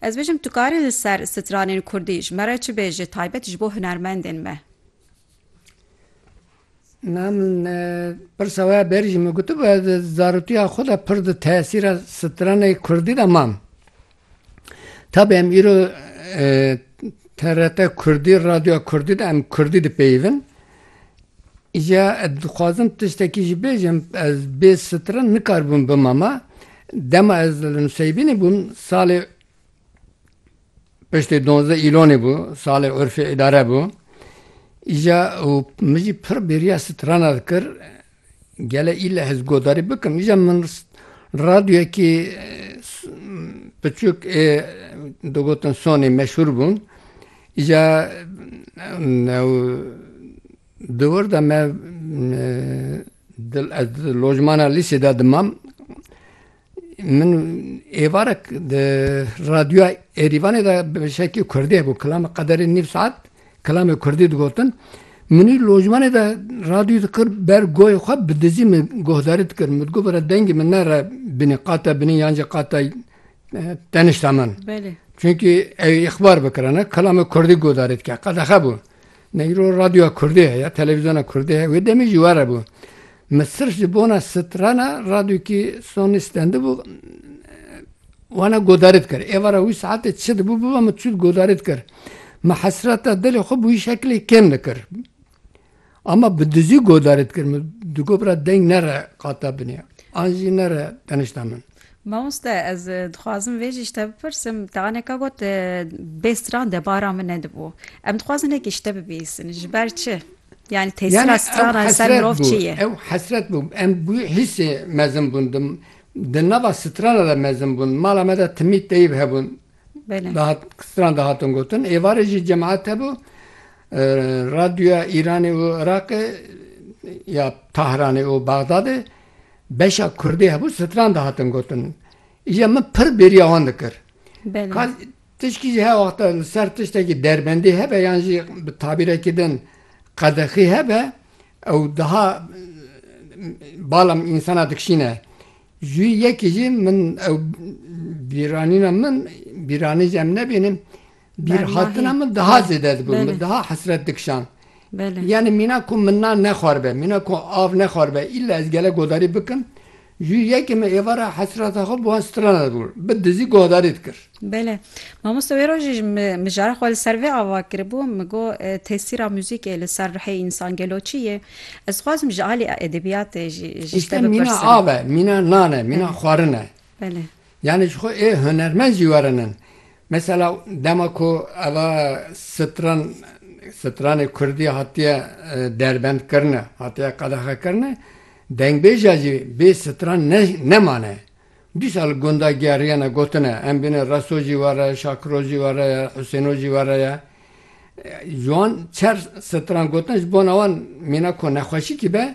Ez bêjim tu karî li ser stranên kurdî ji me re çi bêjî taybet ji bo hunermendên me. Na min pirsa we ya berî jî min gotibû ez li zaroktiya xwe de pir di tesîra stranê kurdî de mam. Tabî em îro TRT kurdî, radyoya kurdî de em kurdî dipeyivin. Ya ez dixwazim tiştekî jî bêjim, ez bê strin nikaribûm bimama. Dema ez li Nuseybînê bûm salê piştê donzdeh îlonê bû, salê urfê îdare bû. Îja û min jî pir bêriya strana dikir. Gele île ez godarî bikim îja min radyoyekî piçûk ê digotin Sonê meşhûr bûn. Îja di wir de me ez di lojmana lîsê de dimam. Min êvarek di radyoya Êrîvanê de bi şekî kurdî hebû kilamê qederê nîv saet kilamê kurdî digotin. Minî lojmanê de radyoyê dikir ber goyê xwe bi dizî min guhdarî dikir. Min digot bira dengê min nere binî qate binî yan jî qate tenişta min. Çunkî ew ê îxbar bikirine kilamê kurdî guhdarî dike. Qedexe bû. Negro radyoya kurdî heye, televîzyona kurdî heye. Wê demê jî were bû. Min sirf ji bona strana radyokî Sony stendibû wana godarî dikir. Êvara wî saetê çi dibû bibe min çû godarî dikir. Min hesreta dilê xwe bi wî şeklê kêm dikir. Ama bi dizî godarî dikir. Min digot bira deng nere qata binê. An jî nere tenişta min. Mamoste ez dixwazim vê jî ji te bipirsim, te aneka got bê stran de bara min nedibû. Em dixwazin hekî ji te bibihîstin. Ji ber çi? Yani tesira strana li ser mirov çi ye? Ew hesret bû. Em bi wî hîsê mezin bûn. Di nava strana de mezin bûn. Mala me de timî teyîb hebûn. Stran dihatin gotin. Êvarê jî cemaet hebû. Radyoya Îranê û Iraqê ya Tahranê û Bexdadê beşa kurdê hebû stran dihatin gotin. Îja min pir bêriya wan dikir. Ka tişkî jî her wexta li ser tiştekî derbendî hebe yan jî bi tabîrekî din qedexî hebe ew daha bala însana dikişîne. Ji wî yekî jî min ew bîranîna min bîranî ji em nebîne. Bîrhatina min daha zêde dibû, min daha hesret dikişand. Yanî mîna ku min nan nexwaribe, mîna ku av nexwaribe îlla ez gelek guhdarî bikim, ji yekê min êvara hesreta xwe bi wan strana dibû, bi dizî guhdarî dikir. Bele. Mamoste wê rojê ji mijara xwe li ser vê ava kiribû, min got tesîra muzîkê li ser ruhê însan gelo çi ye? Ez dixwazim ji alî edebiyatê jî ji te bipirsim. Mîna av e, mîna nan e, mîna xwarin e. Bele. Yanî ji xwe ê hunermend jî werinin. Mesela dema ku eva stran stranê kurdî hatiye derbendkirine, hatiye qedexekirine, dengbêja jî bê stran ne nemane. Dîsa li gunda geriyene gotine, em bîne reso jî were ye, şakiro jî were ye, husêno jî were ye. Ji wan çar stran gotine ji bona wan mîna ku nexweşîkî be,